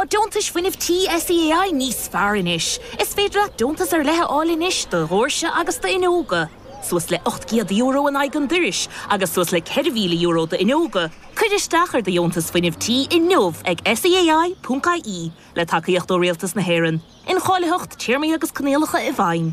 Tá deontais fuinnimh tí SEAI níos fearr anois. Is féidir leat deontas ar leith a fháil anois do dhóirse agus d'fhuinneoga, suas le €800 in aghaidh an doiris agus suas le €4,000 d'fhuinneoga. Cuir isteach ar do dheontas fuinnimh tí inniu ag SEAI.ie, le tacaíocht ó Rialtas na hÉireann. Incháilitheacht, téarmaí agus coinníollacha i bhfeidhm.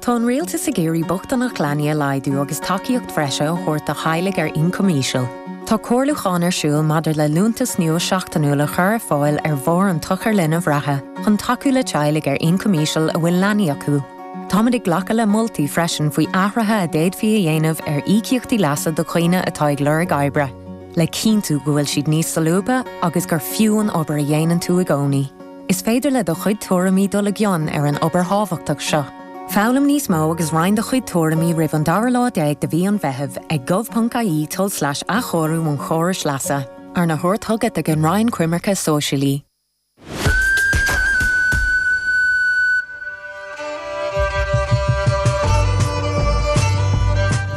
Tá an Rialtas ag iarraidh bochtaineacht leanaí a laghdú agus tacaíocht bhreise a thabhairt do theaghlaigh ar ioncam íseal. Tá comhairliúchán ar siúl maidir le liúntas nua seachtainiúil a chur ar fáil ar bharr an tsochair linbh reatha chun tacú le teaghlaigh ar ioncam íseal a bhfuil leanaí acu. Táimid ag glacadh le moltaí freisin faoi athruithe a d'fhéadfaí a dhéanamh ar íocaíochtaí leasa do dhaoine atá ag lorg oibre, le cinntiú go bhfuil siad níos solúbtha agus gur fiú an obair a dhéanann tú i gcónaí. Is féidir le do chuid tuairimí dul i gcion ar an obair thábhachtach seo. Foghlaim níos mó agus roinn do chuid tuairimí roimh an dara lá déag de mhí an Mheithimh ag gov.ie tulslais athchóiriú an chórais leasa, arna thabhairt chugat ag an Roinn Coimirce Sóisialaí.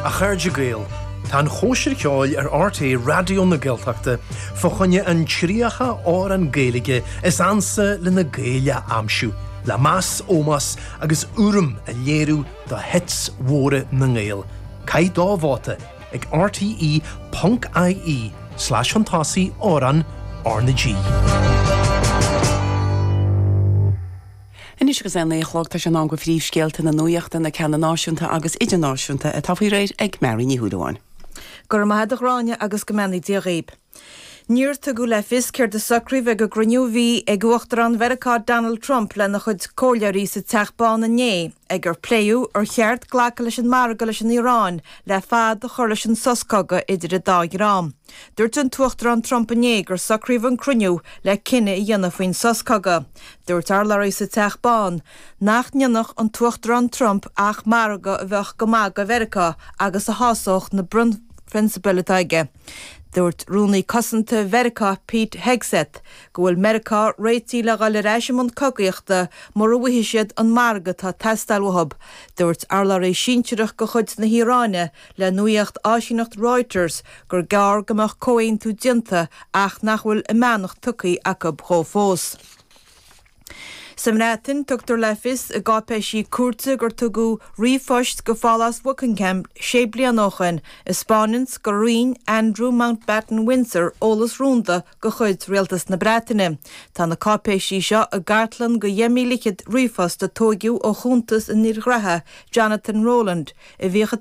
A chairde Gael, tá an chóisir cheoil ar RTÉ Raidió na Gaeltachta fá choinne an 30 amhrán Gaeilge is ansa le na Gaeil a aimsiú le meas, ómós agus urraim a léiriú do hits mhóra na nGael. Caith do vóta ag RTÉ ponc ie slash shuntasaigh amhrán RnaG. Anois agus é a naoi a chlog, tá sé in am go phríomhscéalta na nuachta, na ceanna náisiúnta agus idirnáisiúnta, atá faoi réir ag Mary Ní Shúilleabháin. Go raibh maith a'd a Ghráinne agus go mbeannaí Dia dhaoib. Níor tugadh le fios céard a socraíodh ag an gcruinniú a bhí ag Uachtarán Mheiriceá Donald Trump lena chuid comhairleoirí sa Teach Bán inné ag ar pléadh ar cheart glacadh leis an margadh leis an Iaráin le fad a chur leis an sos cogaidh idir an dá dhream. Dúirt an tUachtarán Trump inné gur socraíodh an cruinniú le cinneadh a dhéanamh faoin sos cogaidh. Dúirt urlabhraí sa Teach Bán nach ndéanfadh an tUachtarán Trump ach margadh a bheadh go maith do Mheiriceá agus a shásódh na bunphrionsabail atá aige. Dúirt Rúnaí Cosanta Mheiriceá Pete Hegseth go bhfuil Meiriceá réitithe le dhul ar ais i mbun cogaíochta mura bhfaighidh siad an margadh atá ag teastáil uathu. Dúirt urlabhraí sinsearach de chuid na hIaráine le nuaíocht áisíneacht Reuters gur gearr go mbeadh comhaontú déanta ach nach bhfuil a mbeannacht tugtha acu dhó fós. Sa mBreatain, tugtar le fios i gcáipéisí cúirte gur tugadh ríomhphoist go Phálás Buckingham sé bliana ó shoin a spáineanns gur roinn Andrew Mountbatten Windsor eolas rúnda de chuid Rialtas na Breataine. Tá na cáipéisí seo i gcartlann go dheich míle fichead ríomhphost a tóigeadh ó chuntas an fhir ghnaithe Jonathan Rowland a bhíodh i